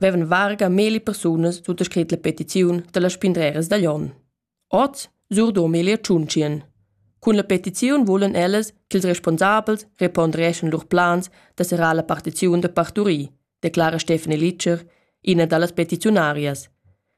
vevan varga meli persunas suttascrit la petiziun dalla spindreras da Jon. Oz surdom el tschuncien. Cun la petiziun vulan ellas ch'ils responsabels repondereschan lur plans da serrar la partiziun da parturir, declara Stefanie Litscher, ina dallas petiziunarias.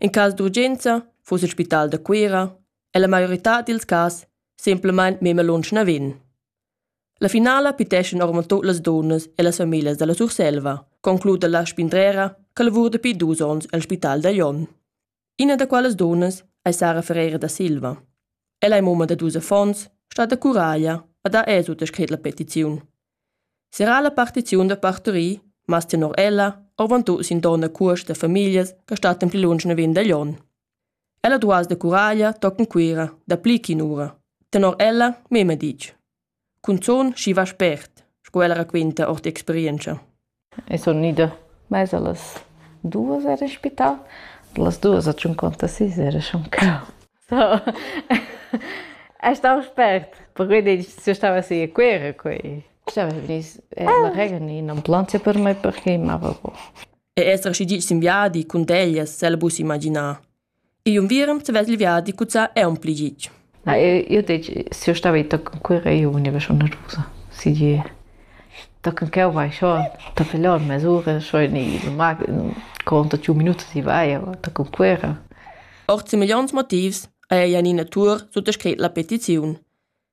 In cas d'urgenza fuss il spital da Cuira e la maioritad dils cas semplamein memia lunsch naven. La finala piteschan ormon tut las dunnas e las famiglias dalla Surselva, concluda la spindrera che lavura dapi dus onns el spital da Jon. Ina da quellas dunnas ei Sara Ferreira da Silva. Ella ei mumma da dus affons, stat da curaglia e dà esut a scret la petiziun. Serrà la partiziun da parturir, mas tenor ella avon tut sin donna cuost da famiglias che stattan pli lunsch naven da Glion. Ella duas da Curaglia toccan Cuira dapli ch'in'ura, tenor ella mema ditg. Cunzun schi va spert, sco ella raquinta ord experientscha. E sun ida mez a las duos era in spital. Da las duos a tschuncontasis era schon clau. Ei stau spert, perquei se stava si a Cuera quei. Stava venis la rega ni un'ambulanza per me perché mava bo. E esser schi ditg sin viadi cun teglias, el bus imaginar. igl unviern haveva il viadi cuzzà aunc pli gitg. Na, io detg, se io stava i toc con quera io univa schon nervusa, si di. Tochen ch'eu vai scho, tochen lò in mesura, scho in il mag, conto tschun minut si vai, aber da con quera. Ord semegliants motivs haja ina natur suttascrit la petiziun.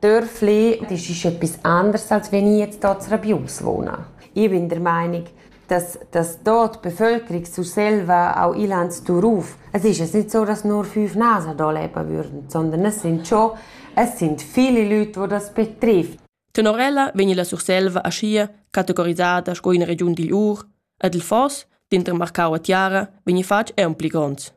Dörfli, das ist etwas anderes, als wenn ich jetzt hier in Rabius wohne. Ich bin der Meinung, dass, dass da die Bevölkerung zu selber auch Ilanz drauf, es ist jetzt nicht so, dass nur fünf Nasen da leben würden, sondern es sind schon, es sind viele Leute, die das betrifft. Tenor ella vegni la Surselva aschia categorisada sco ina regiun digl Ur ed il foss, denter Marcau e Tiara, vegni fatg aunc pli gronds.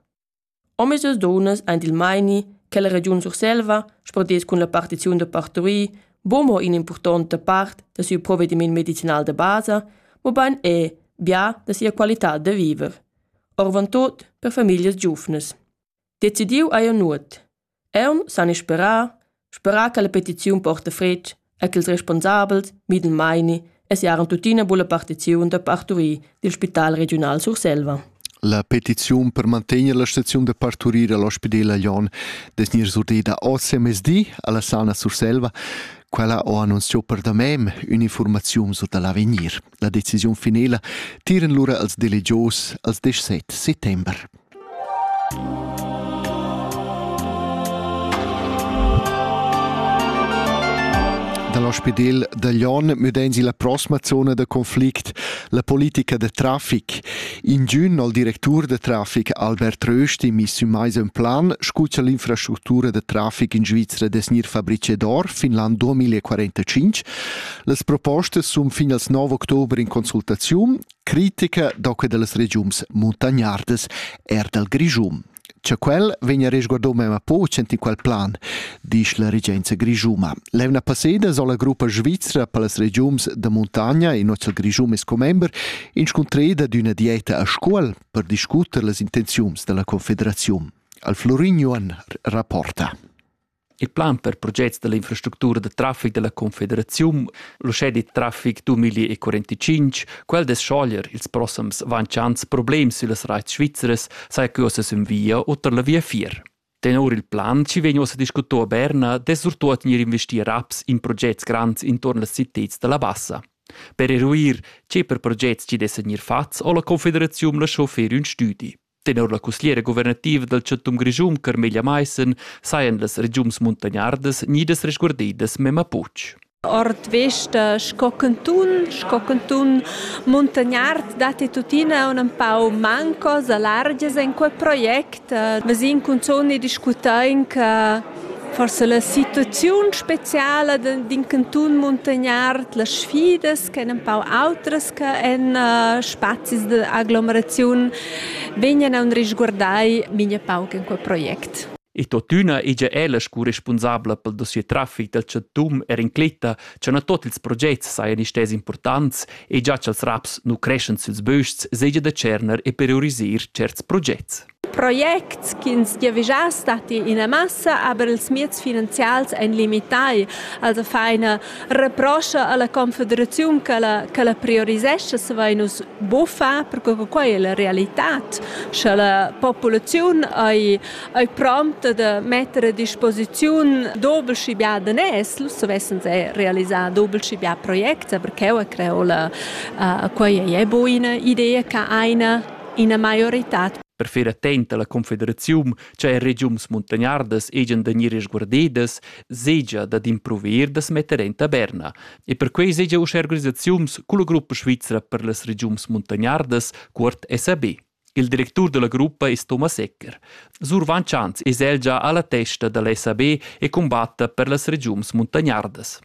Omisdus dunnas ein il meini che la regiun Surselva spordess cun la partiziun da parturir buca mo in'impurtonta part da siu provediment medicinal da basa, mobein era bia da sia qualitad da viver, oravontut per famiglias giuvnas. Decidiu ei ei nuot. Eu s'han isperà, sperà cha la petiziun porta fretg e ch'ils responsabels midan maini e siaran tuttina bulla partiziun da parturir dil spital regiunal Surselva. La petiziun per mantegner la staziun da parturir all'ospidela Jon des gnir surdeda oz mezdi alla Sana Surselva. Quella ho annunziò per da mem ün'informaziun sur da l'avegnir. La decisiun finela tiran lura als delegios als 17 settember. Dall'ospedel da Lyon müdein la prossima zona da conflict la politica de traffic. In giun al directur de traffic Albert Rösti mi sü mais un plan scuccia l'infrastruttura de traffic in Svizzera des Nir Fabrice d'Or fin l'an 2045. Las propostas sun fin al 9 october in consultaziun critica da que da las regiuns muntagnardas er dal Grischun. Cha quel vegna resguardo mema po cent in qual plan, disch la regenza grischuma. L'evna passeda sola gruppa svizra per las regiuns da montagna in nozzal Grischum es commember inscuntreda d'üna dieta a Scuol per discuter las intenziuns della Confederaziun. Al Florin Johan rapporta. Il plan per projects dall'infrastructura da traffic dalla Confederaziun, l'uschè dit traffic 2045, quel dess schoglier ils prossems vanciants problems süllas raits svizzeras, saja que ossa sün via o tar la viafier. Tenor il plan ci vegn ossa discuto a Berna dess surtuot gnir investir raps in progetts grands intorn las citats dalla Bassa. Per eruir, che per progetts ci dessa gnir fats, ho la Confederaziun lascho fer ün stüdi. Tenor la cussgliera guvernativa dal chantun Grischun Carmelia Maissen sajan las regiuns muntagnardas gnidas resguardidas memma puch. Ord vesta sco cantun, sco cantun muntagnard datti tuttina un empau mancos a largias en quel project. Vesin cunzon e discutain che forse la situaziun speciala d'in cantun muntagnard, las sfidas ch'en empau autras che en uh, spazis d'aglomeraziun vegnan a risguardai migna pauc en quel project. E totüna ella è la scu responsabla pel dossier traffic dal chantum er incletta cha na tot ils progets sajan istess importants e già cha'ls raps nu creschan süls bösts seja da tscherner e priorisir certs progets. Projects ch'ins giavischass datti ina massa, aber ils meds finanzials èn limitai. Also fa ina reproscha alla confederaziun ch'ella ch'ella priorisescha, savein nus buffar, perche che quei è la realitad. Sche la populaziun ei ei prompta da metter a disposiziun doble schi bia daners, nus savessen er realisar doble schi bia projects, aber cheu a creo la quei ei buina idea che einer ina maioritad. Per fer attent alla confederaziun cha er regiums muntagnardas ejan da gnir resguardedas, segia dad impruver da smetter en taberna. E perquei segia uschè organisaziuns culla gruppa svizra per las regiums muntagnardas, cuort SAB. Il directur della gruppa è Thomas Ecker. Sur Van Chans es el già alla testa dalla SAB e combatta per las regiums muntagnardas.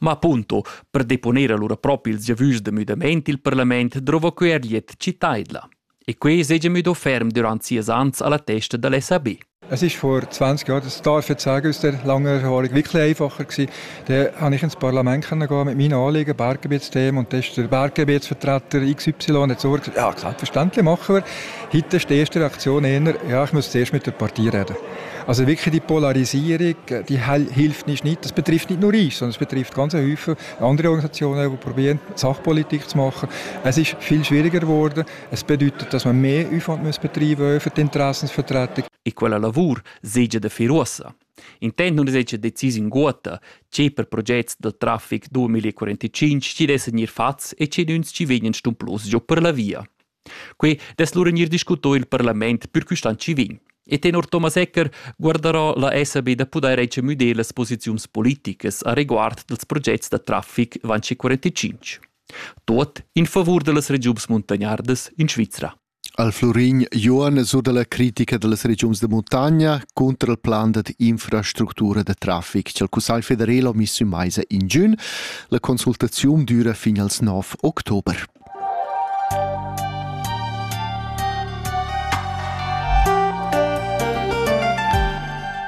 Ma punto, per deponer allura propi ils giavüschs da müdamaint il parlament drouva quei er glied citaidla. E quei segia müdo ferm durant sias ans alla testa dall SAB. Es ist vor 20 Jahren das Talverzeigen aus der langen Erfahrung wirklich einfacher gewesen. Da konnte ich ins Parlament gehen mit meinen Anliegen, Berggebietsthemen und da ist der Berggebietsvertreter XY hat gesagt, ja, selbstverständlich machen wir. Heute ist die erste Reaktion eher, ja, ich muss zuerst mit der Partei reden. Also wirklich die Polarisierung, die hilft nicht, nicht. Das betrifft nicht nur uns, sondern es betrifft ganz viele andere Organisationen, die probieren, Sachpolitik zu machen. Es ist viel schwieriger geworden. Es bedeutet, dass man mehr Aufwand muss betreiben für die Interessensvertretung. E quella lavur segia da fir uossa. Intent nun segia decis in guota, che per progetts da traffic 2045 ci dessen ir fats e ci nuns ci vegnan stumplos giù per la via. Quei dess lura gnir discuto i'l parlament pür quist an chi vegn. E tenor Thomas Ecker guardarò la SAB da pudair recemüder las posiziuns politicas a reguard dels progets da traffic van 45. Tot in favur dellas regiuns muntagnardas in Svizra. Al Florin Johan sur dalla critica dellas regiuns de muntagna contra il plan da infrastruttura de traffic che il Cussagl federal ha miss in meisa in giun. La consultaziun dura fin als 9 october.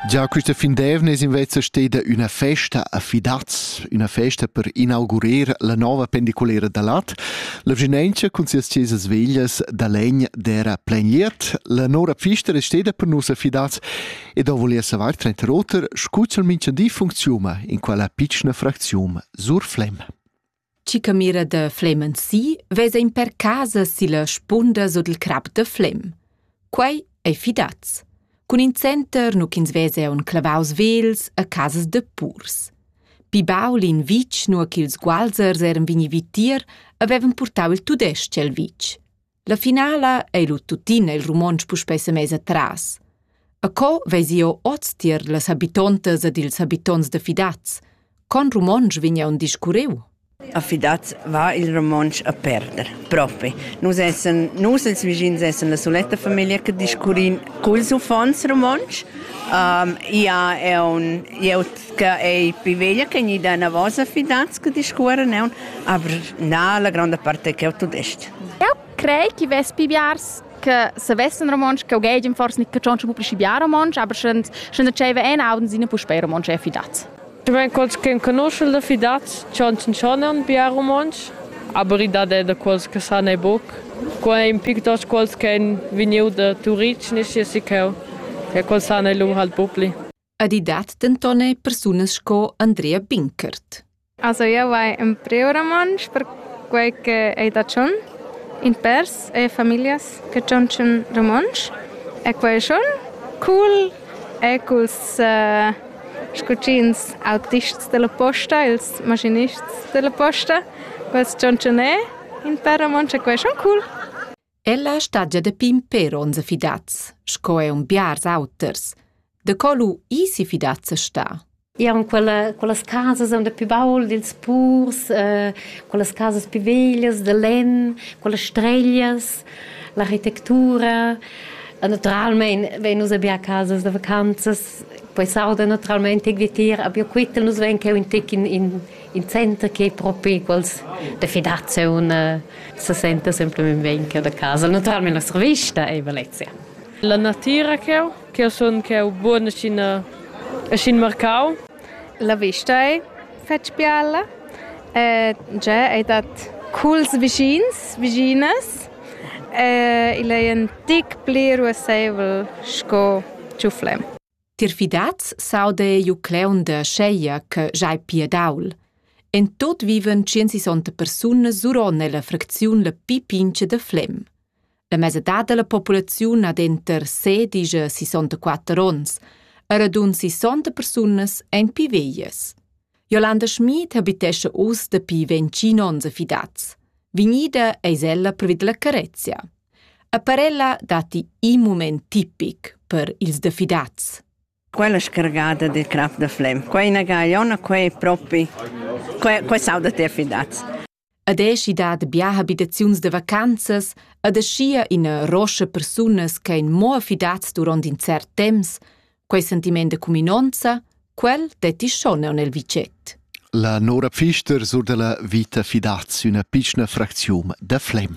Già quista fin d'eivna es invece steda üna festa a Fidaz, üna festa per inaugurer la nova pendiculera da lat. La vginentscha cun sias chesas veglias da legn d'era pleniert. La nora pfista è steda per nus a Fidaz ed ho volia savar trenter oter, scu ch'el minchadi funcziuma in quella pitschna fracziun Surflem. Chi camira da Flem si vesa in per casa silla spunda sut il crap da Flem. Quei ei fidaz. Cun in center nu ch'ins vesa aun clavaus vels a casas da purs. Pi baul in vitg, nua ch'ils gualzers eran vegni vitier, avevan purtau il tudesc el vitg. La finala ei lu tuttina il romontsch puspei semess atras. E co vesi jeu oz tier las habitontas ed ils habitonts da Fidaz? Con romontsch vegn aunc discurriu? A Fidaz va il romontsch a perder, propi. Nus essen, nus els vischins essen la soletta famiglia che discurrin culs uffants romontsch. Um, ja è un jeut che è più veglia che gli da una vosa Fidaz che discorre neun, aber na la grande parte che è tudest. Eu crei chi vess pi biars che savessan romontsch, ch'eu geigen forse nicht catschontsche pubblici bia romontsch, aber sch'en dscheva ein Abend sine puspei romontsch e fidaz. Ich meine, quels che conoscono da fidaz chancionan bia romontsch, aber i dat er da quels che san e buc. Qua è un pictos quels che han vegniu da Turic, nisci si cheu, e quels san e lur halt bupli. Ed i dat denton er persunas sco Andrea Binkert. Also io vai in preoramantsch per quei che ei da tschon. In pers e familias che tschontschen romontsch. E quei è schon cool. E culs uh, scucins autists della posta, ils maschinists della posta, quels tschontschen è in per romontsch e quei è schon cool. Ella stagia da pimper onza fidats, sco è un biars auters. Da co lu isi fidats a sta? Eran quella, quellas casas han da più baul dils purs, eh, quellas casas più veglias da lenn, quellas streglias, l'architectura. Naturalmein vein nus abia casas da vacanzas, poi sauda naturalmein tec vitier, abia quittel nus vein cheu in tec in, in, il center che propi quels da federaziun eh, se senta semplicemente bene che da casa. Naturalmente nostra vista è Valencia. La natura che ho, che io sono che ho buona in in Marcau. La vista è fetg biella. Eh, già è dat culs vicins, viginas. Eh, il è un tic pli ruassevel sco ciuflem. Tier fidats s'auda jeu cleu da scheglia che sch'ei piadaul. En tot vivan tschient-sessanta persunas suron ella fracziun la pli pincha da Flem. La mesadad dalla populaziun ha denter sedisch e sessanta-quatter onns, e radund sessanta persunas ein pi veglias. Jolanda Schmid habitescha oz dapi ventgin onns a Fidaz. Vegnida eis ella previd la Carezia. A parella datti in mument tipic per ils da Fidaz. Quella scargada del crap da flem. Quei è una gagliona, quei è propi. Quei, quei sauda te a Fidaz. Ed è schi dat bia habitaziuns da vacanzas ed aschia ina roscha persunas ch'ein mo affidads duront in cert temps, quei sentiment da cuminonza, quel detti schon aunc el vitget. La Nora Pfister sur dalla vita fidaz üna pitschna fracziun da Flem.